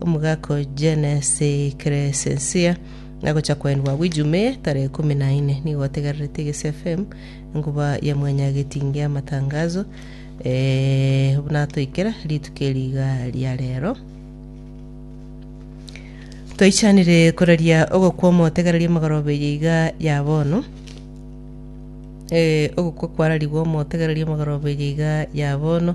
Omogaka o Genesi Crescencia agocha koendwa agwo Ijumee tarehe ikomi na ine. Nigo otegererete Egesi FM enkuba ya mwanya getingi amatangazo eh, buna atoikera rituko eri iga ria rero. Toichanire koraria ogokwa omotegereria emegoroba eye iga ya bono. Eh, ogokwa kwararigwe omotegereria emegoroba eye iga ya bono.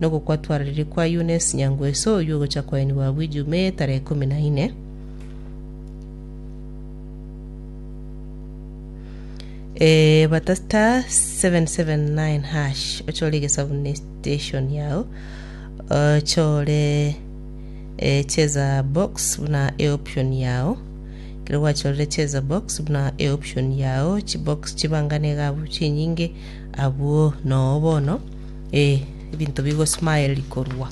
Nogokwa twararirie kwa Eunice Nyangweso oyio ogocha koenigwa agwo Ijumaa eye tarehe ikomi na ine, Ebata *779# ochore egesabu ne station yao ochore eh, cheza box buna eoption yao kero gwachorire cheza box buna eoption yao chibox chibangane iga abwo chinyinge abwo noo bono Ee, ebinto bigosmile korwa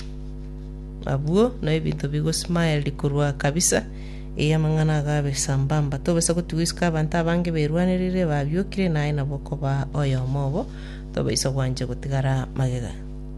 abwo, na ebinto bigosmile korwa kabisa, ee, amang'ana ago abe sambamba. Tobisa gotigwa isiko abanto abange berwanerire, babiokire, na aye nabo okobaa oyomo obo, tobaisa gwancha gotigara magega.